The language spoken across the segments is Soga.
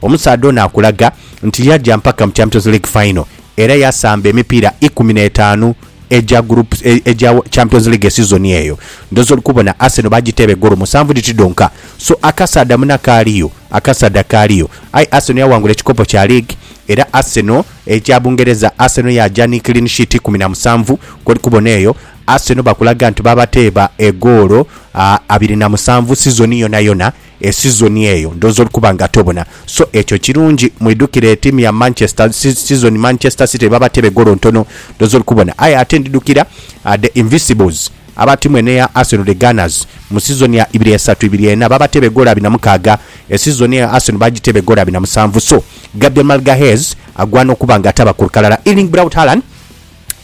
Omusaadha ono akulaga nti yaja mpaka mu Champions League Final era yasamba emipiira ikumi n'etaanu egya group egya Champions League esizoni eyo. Ndhoozi oli kubona Arsenal baagiteeba egoolo musanvu dhiti dhonka. So akasaadha muna kaaliyo, akasaadha kaaliyo. Aye Arsenal yawangula ekikopo kya liigi era Arsenal, ekya Bungereza, Arsenal yaaja ni clean sheet ikumi na musanvu. Kw'oli kubona eyo, Arsenal bakulaga nti baabateeba egoolo abiri na musanvu sizoni yonayona. esizoni eyo ndhooza oli kuba nga tobona, so ekyo kirungi. Mwidhukire etiimu ya Manchester si, sizoni Manchester City lwe babatera egoolo ntono, ndhooza oli kubona. Aye ate ndidhukira The Invisibles aba ttiimu eno eya Arsenal, The Gunners, mu sizoni ya ibiri esatu ibiri ena baabateeba egoolo abiri na mukaaga. Esizoni eyo Arsenal baagiteeba egoolo abiri na musanvu. So Gabriel Magalhaes agwana okuba nga taba ku lukalala. Erling Braut Haaland.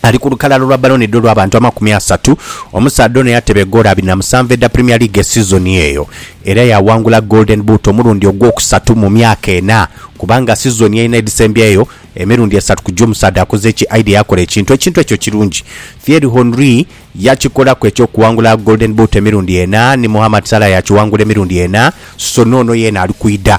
Ali ku lukalala lwa balonedwa olw'abantu amakumi asatu, omusaadha ono yateba egoolo abiri na musanvu edha Premier League esizoni eyo era yaawangula Golden Boot omulundi ogwokusatu mu myaka ena kubanga sizoni ena edhisembyeyo emirundi esatu ku gyo omusaadha akoze eki aidha yakola ekintu ekintu ekyo kirungi. Thierry Henry yakikolaku eky'okuwangula Golden Boot emirundi ena ni Mohamed Salah yakiwangula emirundi ena so n'ono yeena ali kwidha.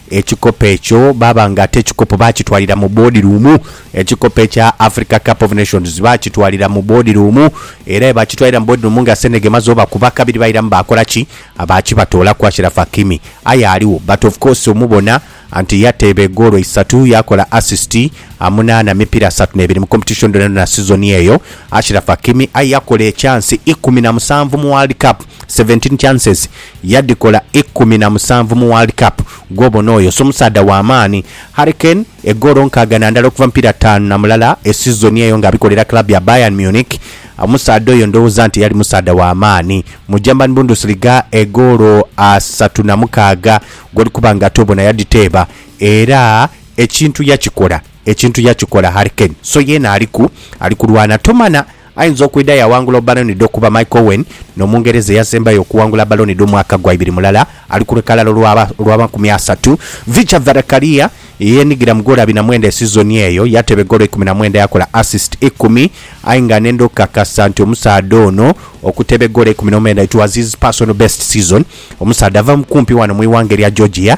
Ekikopo ekyo baaba nga ate ekikopo baakitwalira mu boodiruumu. Ekikopo ekya Africa Cup of Nations baakitwalira mu boodiruumu era ye baakitwalira mu boodiruumu nga Senegal emaze obakuba kabiri bairamu baakola ki? Baakibatoolaku Achraf Hakimi. Aye aligho but of course omubona nti yateeba egoolo isatu, yaakola assist munaana, mipiira asatu n'ebiri mu competition dhonadhona sizoni eyo. Achraf Hakimi aye yakola ekyansi ikumi na musanvu mu World Cup, seventeen chances, Yadhikola ikumi na musanvu mu World Cup, gwobona oyo so musaadha wa maani. Harry Kane, egoolo nkaaga na ndala okuva mu mipiira taanu na mulala e sizoni eyo nga abikolera club ya Bayern Munich. Omusaadha oyo ndhowooza nti yali musaadha wa maani. Mu German Bundesliga egoolo asatu na mukaaga gw'oli kuba nga ate obona yadhiteeba era ekintu yakikola, ekintu yakikola Harry Kane. So yeena aliku, ali kulwana tomana. Ayinza okwidha yawangula obbaloni dh'okuba Michael Owen n'Omungereza eyasembayo okuwangula bbaloni dh'omwaka gwa ibiri mulala ali ku lukalala olw'abankumi asatu, Vicha Varakkaria eyenigira mu goolo abiri na mwenda esizoni eyo yateeba egoolo eikumi na mwenda yakola assist ikumi aye nga nenda okukakasa nti omusaadha ono okuteeba egoolo eikumi n'omwenda it was his personal best season omusaadha ava kumpi wano mu ighanga erya Georgia.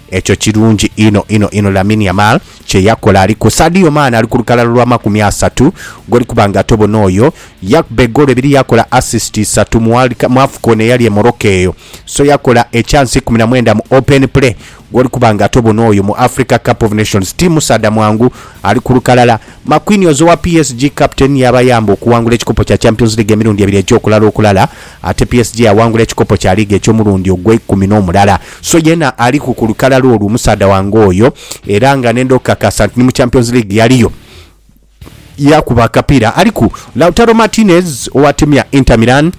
Ekyo kirungi inho inho inho Lamine Yamal kye yakola. Ali ku Sadio Mane ali ku lukalala lwa makumi asatu gw'oli kuba nga ate obona oyo yakuba egoolo ibiri yakola assist isatu mu World Cup, mu Afcon eyali e Morocco eyo. So yakola ekyansi ikumi na mwenda mu Open Play gw'oli kuba nga ate obona oyo mu Africa Cup of Nations. Ti musaadha mwangu, ali ku lukalala. Marquinhos owa PSG captain y'abayamba okuwangula ekikopo kya Champions League emirundi ebiri egy'okulala okulala. Ate PSG yawangula ekikopo kya liigi eky'omulundi ogweikumi n'omulala. So yeena aliku ku lukalala olwo omusaadha wange oyo era nga nenda okukakasa nti ni mu Champions League yaliyo yaakuba akapiira. Aliku. Lautaro Martinez owa tiimu ya Inter Milan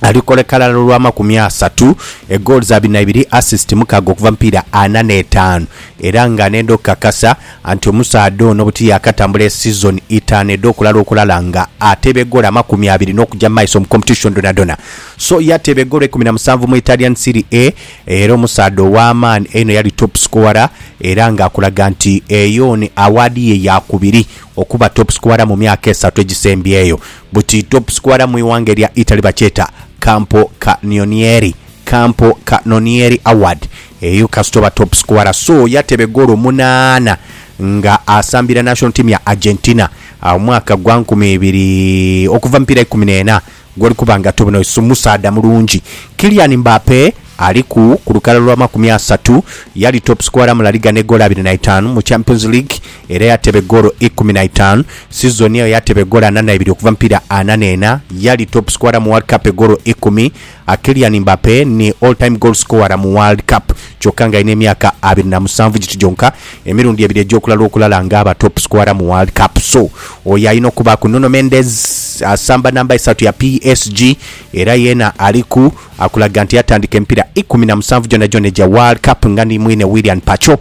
ali ku lukalala olw'amakumi asatu, egoolo za bina ibiri, assist mukaaga okuva mu mipiira ana n'etaanu era nga nenda okukakasa Anti omusaadha ono buti yaakatambula esiizoni itaanu edh'okulala okulala nga ateebegora amakumi abiri n'okuja mu maiso mu competition dhonadhona. So yateebegorwa ikumi na musanvu mu Italian Serie A era omusaadha ow'amaani einho yali top scorer era nga akulaga nti eyo ni awaadi ye ya kubiri okuba top scorer mu myaka esatu egisembyeyo. Buti top scorer mu ighanga erya Italy bakyeta Campo Cannonieri, Campo Cannonieri Award. Eyo kasita oba top scorer so yatebe goolo munaana nga asambira national team ya Argentina omwaka gwa nkumi ibiri okuva mipiira ikumi n'ena gwoli kuba nga tobona oyo si musaadha mulungi. Kylian Mbappe aliku ku lukalala lwa makumi asatu yali top scorer mu La Liga ne goolo abiri na itaanu, mu Champions League era yatebe goolo ikumi na itaanu sizoni eyo yatebe goolo ana na ibiri okuva mipiira ana n'ena, yali top scorer mu World Cup egoolo ikumi. A Kylian Mbappe ni all time goal scorer mu World Cup kyoka nga alina emyaka abiri na musanvu giti gyonka, emirundi ebiri egyokulala okulala nga aba top scorer mu World Cup so oyo alina okubaaku. Nuno Mendes asamba namba isatu ya PSG era yena aliku akulaga nti yatandika emipira ikumi na musanvu gyonagyona egya World Cup nga ni mwine Willian Pacho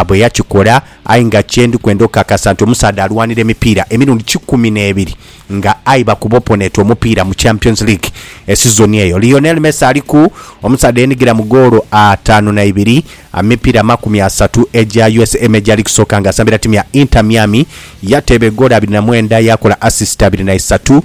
bweyakikola aye nga kyendi kwenda okakasa nti omusaadha alwanira emipiira emirundi kikumi nebiri nga aye bakuba oponeeti omupiira mu Champions League esizoni eyo. Lionel Messi aliku omusaadha eyenigira mu goolo ataanu na ibiri mu mipiira amakumi asatu egya usa Major League Soccer nga asambira ttiimu ya Inter Miami. Yateeba egoolo abiri na mwenda yaakola asisiti abiri na isatu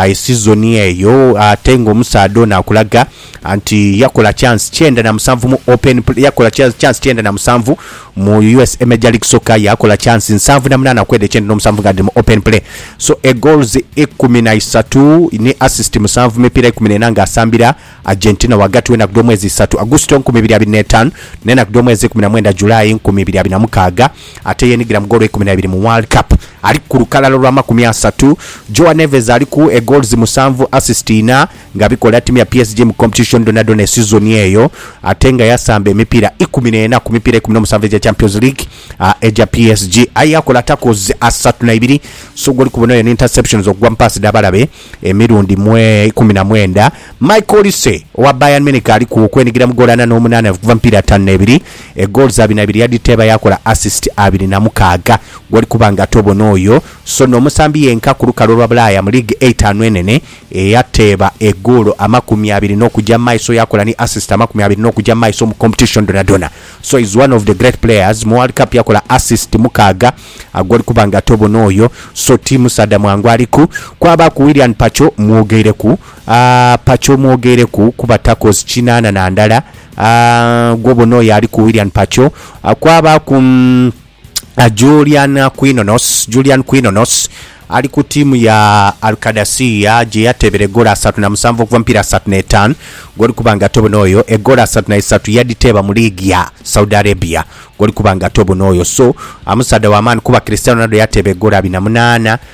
esizoni eyo ate ng'omusaadha ono akulaga anti yakola chance kyenda na musanvu mu Open Play, yakola cha- chance kyenda na musanvu mu usa Major League Soccer, yakola chance nsanvu na munaana okwedha ekyenda n'omusanvu nga dhiri mu Open Play. So e goals ikumi na isatu ni assist musanvu mu mipiira ikumi n'ena nga asambira Argentina ghagati w'enaku dh'omwezi isatu, Augusito nkumi ibiri abiri n'etaanu, n'enaku dh'omwezi ikumi na mwenda, July nkumi ibiri abiri na mukaaga, ate yeenigira mu goolo ikumi na ibiri mu World Cup. Ali ku lukalala olw'amakumi asatu. João Neves aliku e goals musanvu, assist inha. nga bikola ttiimu ya PSG mu kompetishoni dhonadhona esizoni eyo ate nga yasamba emipiira ikumi n'ena ku mipiira ikumi n'omusanvu egya Champions League egya PSG aye yakola takles asatu na ibiri so gwoli kubona oyo ni interceptions okugwa mu paasi dh'abalabe emirundi mwe ikumi na mwenda. Michael Olise owa Bayern Munich ali ku okwenigira mu ggoolo ana n'omunaana okuva mu mipiira ataanu n'ebiri, eggoolo za bina ibiri yadhiteeba yaakola assist abiri na mukaaga gwoli kuba nga tobona oyo so n'omusambi yenka ku lukalu olwa Bulaaya mu liigi eitaanu enene. Eyateeba egoolo amakumi abiri n'okuja mu maiso yakola ni assist amakumi abiri n'okuja mu maiso mu competition dhonadhona. So is one of the great players. Mu World Cup yakola assist mukaaga agoli kuba nga ate obona oyo so ti musaadha mwangu ali ku. Kwabaaku Willian Pacho mwogeireku, aah Pacho mwogeireku kuba tackles kinaana na ndala, aah gwobona oyo ali ku Willian Pacho. Kwabaaku. Julian Quinones, Julian Quinones ali ku tiimu ya Al Qadasiyah gye yateebera egoolo asatu na musanvu okuva mu mipiira asatu n'etaanu gw'oli kuba nga tobona oyo. Egoolo asatu na isatu yadhiteeba mu liigi ya Saudi Arabia gw'oli kuba nga tobona oyo. So amusaadha wa maani kuba Cristiano Ronaldo yateeba egoolo abiri na munaana.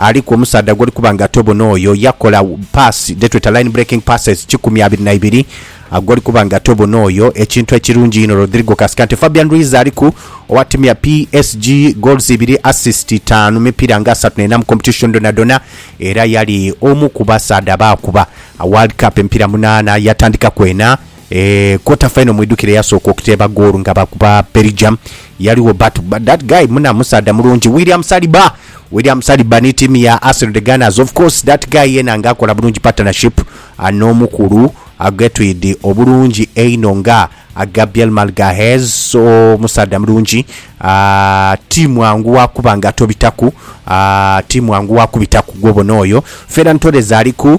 Aliku omusaadha gwoli kuba nga tobona oyo yakola paasi dhetweta line breaking passes kikumi abiri na ibiri gwoli kuba nga tobona oyo ekintu ekirungi inho Rodrigo Cascante Fabian Ruiz aliku owatimya PSG goals ibiri assist taanu mipiira nga asatu n'ena mu competition dhonadhona era yali omu ku basaadha abaakuba World Cup emipiira munaana yatandikaku ena E quarter final mwidhukire eyasooka okuteeba ggoolu nga bakuba Belgium yaligho but that guy muna musaadha mulungi William Saliba William Saliba ni tiimu ya Arsenal the Gunners of course that guy yena nga akola bulungi partnership n'omukulu Getrude obulungi einho nga Gabriel Magalhaes so musaadha mulungi ti mwangu wa kuba nga tobitaku ti mwangu wa kubitaku gw'obona oyo Ferran Torres ali ku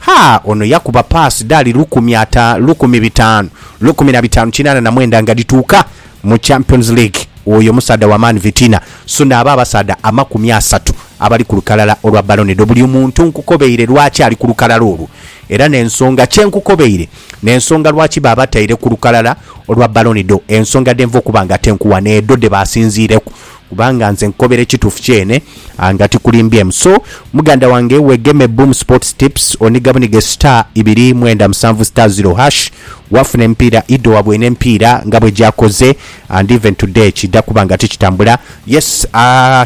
Ha, ono yakuba paasi dhali lukumi ata, lukumi bitaanu, lukumi na bitaanu kinaana na mwenda nga dhituuka mu Champions League. Oyo musaadha wa maani Vitinha. Suna abo abasaadha amakumi asatu abali ku lukalala olwa Ballone d'Or. Buli muntu nkukobeire lwaki ali ku lukalala olwo. Era n'ensonga kye nkukobeire, n'ensonga lwaki baabataire ku lukalala olwa Ballone d'Or, ensonga dhenva okuba nga ate nkuwa n'edho dhe baasinziireku kubanga nze nkukobera ekituufu kyene nga tikulimbyemu so muganda wange wegeme Boom Sports Tips oniga bunige star ibiri mwenda musanvu star zero hash wafuna emipiira idho wabwene emipiira nga bwegyakoze and even today kidha kuba nga tikitambula yes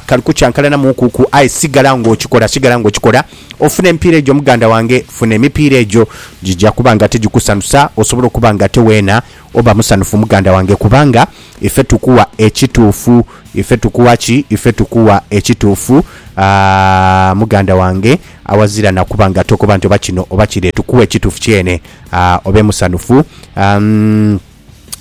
kali kukyankalanamuku ku aye sigala nga okikola sigala nga okikola ofune emipiira egyo muganda wange funa emipiira egyo gigya kuba nga tigikusanusa osobola okuba nga ate weena Oba musanhufu muganda wange kubanga ife tukuwa ekituufu. Ife tukuwa ki? Ife tukuwa ekituufu aah muganda wange awazira na kuba nga tokoba nti oba kino oba kire. Tukuwa ekituufu kyene aah obe musanhufu aah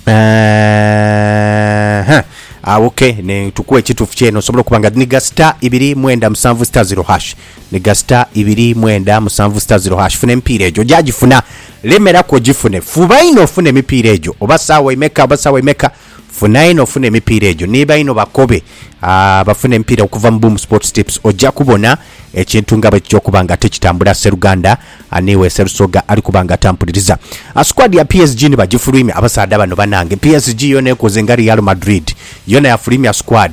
eeh hah aah ok tukuwa ekituufu kyene osobola okuba nga dhiniga star ibiri mwenda musanvu star ziro hash. ni gasita ibiri, mwenda, musanvu sita ziro hash. Funa emipiira egyo. Oja gifuna. Lemeraku ogifune. Fuba inho ofune emipiira egyo. Oba saawa imeka oba saawa imeka, funa inho ofune emipiira egyo. Ni bainho bakobe abafuna emipiira okuva mu Boom Sports Tips. Oja kubona ekintu nga bwekija okuba nga tikitambula. Sseruganda aniwe Sserusoga ali kuba nga atampuliriza. Squad ya PSG ni bagifulwimya. Abasaadha bano banange. PSG yona ekoze nga Real Madrid. Yona yafulwimya squad.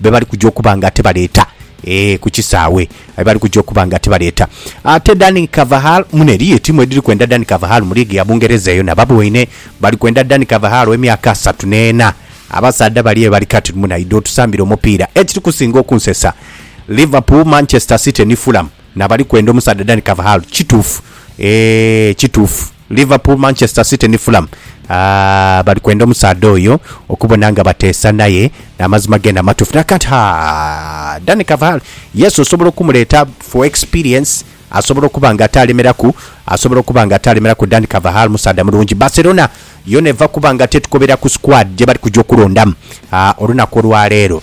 be bali kuja okuba nga ate baleeta ee ku kisaawe be bali kuja okuba nga ate baleeta. Ate Dani Carvajal mune eriyo etiimu edhiri kwenda Dani Carvajal mu liigi ya Bungereza eyo naba boine bali kwenda Dani Carvajal ow'emyaka asatu n'ena. Abasaadha bali eyo bali kati mune aidha otusambira omupiira. Ekiri kusinga okunsesa, Liverpool, Manchester City ni Fulham na bali kwenda omusaadha Dani Carvajal. Kituufu, ee kituufu. Liverpool, Manchester City ni Fulham bali kwenda omusaadha oyo okubona nga bateesa naye n'amazima geene amatuufu. Naye kati ha, Dani Carvajal, yes osobola okumuleeta for experience, asobola okuba nga ate alemeraku, asobola okuba nga ate alemeraku, Dani Carvajal musaadha mulungi. Barcelona yoona eva kuba nga ate etukobera ku squad gye bali kuja okulondamu olunaku olwaleero.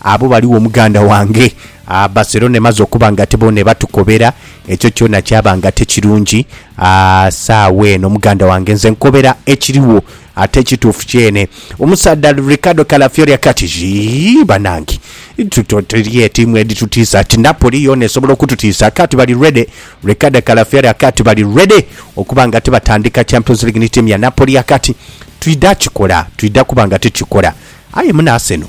Abo baligho muganda wange. Aah Barcelona emaze okuba nga ate boona ebatukobera, ekyo kyona kyaba nga ate kirungi. Aah saagho eno muganda wange nze nkobera ekirigho ate ekituufu kyene. Omusaadha Ricardo Calafiori aka ti, Yii banange tuto teliyo tiimu edhitutiisa ati Napoli yoona esobola okututiisa aka ti bali ready. Ricardo Calafiori aka ti bali ready okuba nga ate batandika Champions League ni tiimu ya Napoli aka ti, Twidha kikola, twidha kuba nga ate tukikola. Aye muna Arsenal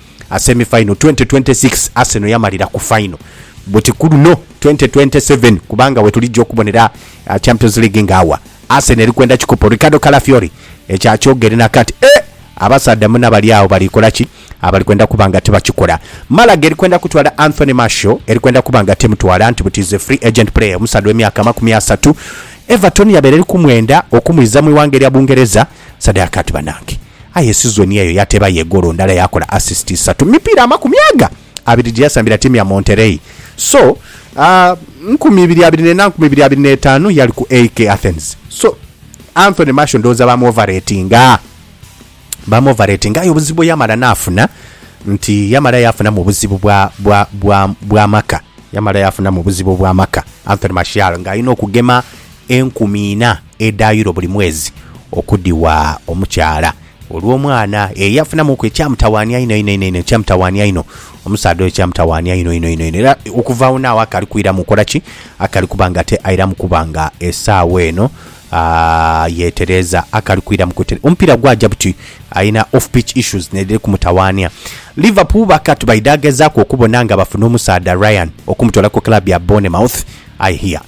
a semi final twenty twenty six Arsenal yamalira ku final buti ku luno twenty twenty seven kubanga wetulijja okubonera Champions League nga awa Arsenal eri kwenda kikopo Ricardo Calafiori ekyakyogere nakati eeh abasaadha muna bali agho bali kola ki abali kwenda kuba nga tibakikola Malaga eri kwenda kutwala Anthony Martial eri kwenda kuba nga temutwala nti buti is a free agent player omusaadha we myaka amakumi asatu Everton yabaire eri kumwenda okumwiza mwi ghanga erya Bungereza. sadaka ati banange aye sizoni eyo yateeba ye goolo ndala yakola assist isatu mu mipiira amakumi aga abiri gyeyasambira ttiimu ya Monterrey so aah nkumi ibiri abiri nena nkumi ibiri abiri netaanu yali ku AEK Athens so Anthony Martial ndowooza ba mu overratinga ba mu overratinga aye obuzibu bweyamala naafuna nti yamala yaafunamu obuzibu bwa bwa bwa bwa maka yamala yaafunamu obuzibu bwa maka Anthony Martial nga alina okugema enkumi ina edha Euro buli mwezi okudhiwa omukyala olw'omwana eyo yafunamuuku ekyamutawaania einho einho einho einho ekyamutawaania einho omusaadha oyo kyamutawaania einho einho einho era okuva agho n'agho akali kwiramu kola ki akali kuba nga ate airamu kuba nga esaawa eno aa yeetereeza akali kwiramu kwetere omupiira gwaja buti alina off pitch issues n'edhiri kumutawaania Liverpool bakatu baidha gezaaku okubona nga bafuna omusaadha Ryan okumutoola ku club ya Bournemouth I hear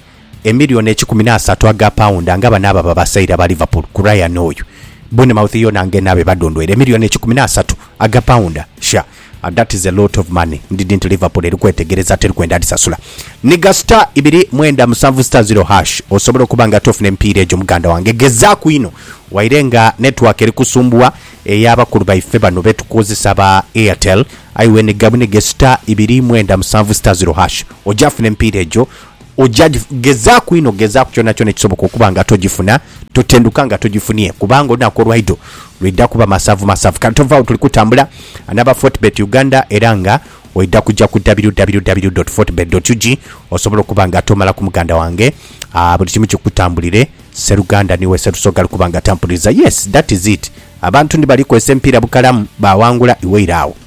Emillioni ekikumi n'asatu aga paunda nga bano abo ababasaira ba Liverpool ku Ryan oyo. Bournemouth yo nange nabe badondweire emillioni ekikumi n'asatu aga paunda. Sha! That is a lot of money. Ndidhi nti Liverpool eri kwetegereza teri kwenda adhisasula. Nhiga star ibiri mwenda musanvu star zero hash osobole okuba nga ate ofuna emipiira egyo muganda wange. Gezaaku inho waire nga network eri kusumbugha eya bakulu baife bano be tukozesa aba Airtel. Aye wenhiga buniga star ibiri mwenda musanvu star zero hash oja funa emipiira egyo Oja gi, gezaaku inho, gezaaku kyonakyona ekisoboka okuba nga togifuna, totendhuka nga togifunie, kubanga olunaku olwaidho lwidha kuba masavu masavu. Kale tovagho tuli kutambula anaba Fortebet Uganda era nga oidha kuja ku www dot fortebet dot ug osobole okuba nga tomalaku muganda wange, aah buli kimu kikutambulire, Sseruganda niwe Sserusoga ali kuba nga atampuliza, yes that is it, abantu ndi bali kozesa emipiira bukalamu, baawangula iwe ira agho.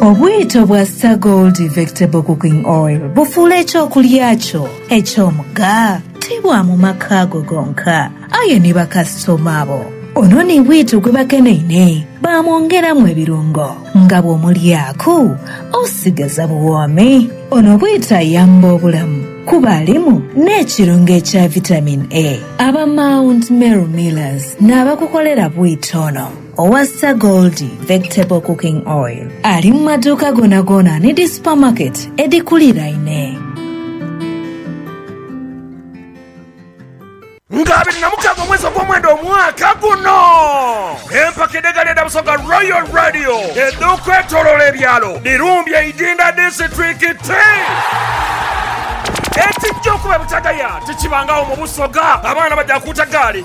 Obwito bwa Star Gold Vectable Cooking Oil bufuula eky'okulya kyo eky'omugha ti bwa mu maka go gonka, aye ni bakasitoma bo. Ono ni bwito gwe bakeneine baamwongeramu ebirungo nga bw'omulyaku osigaza buwoomi. Ono bwito ayamba obulamu kuba alimu n'ekirungo ekya Vitamin A. Aba Mount Meru Millers n'abakukolera bwito ono. Owa Sir Goldie Vectable Cooking Oil ali mu maduuka goonagoona ni dhi supamaketi edhikuliraine. Nga abiri na mukaaga omwezi ogwomwenda omwaka guno, empaka edh'egaali edha Busoga Royal Radio edh'okwetoloola ebyalo dhirumbye Idinda disiturikiti. Ekijja okuba ebutagaya tikibangagho mu Busoga, abaana baja kuuta gaali.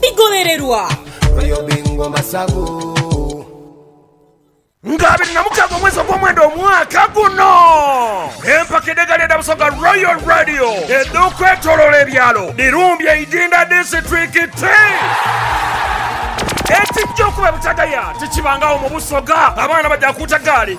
bigholererwa. Nga abiri na mukaaga omwezi ogwomwenda omwaka guno, empaka edh'egaali edha Busoga Royal Radio edh'okwetoloola ebyalo dhirumbye Idinda disiturikiti. Ekijja okuba ebutagaya tikibangagho mu Busoga, abaana baja kuuta gaali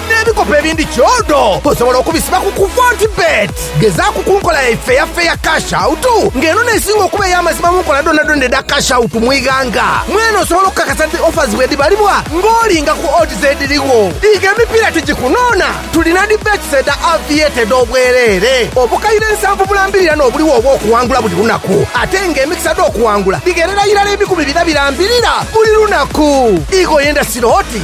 N'ebikopo ebindi kyodo osobola okubisiba ku ku Fortebet. Gezaaku ku nkola yaife eya Fair Cash Out nga eno n'esinga okuba ey'amazima mu nkola dhoonadhoona edha Cash Out mu ighanga. Mwene osobola okukakasa nti offers bwedhibalibwa ng'olinga ku odds edhirigho. Diiga emipiira tigikunoona, tulina dhi bets edha Aviator edh'obwereere. Obukaire nsanvu bulambirirana obuligho obw'okuwangula buli lunaku ate nga emikisa dh'okuwangula dhigherera irala ebikumi bina birambirira buli lunaku. Ighoyo endasi looti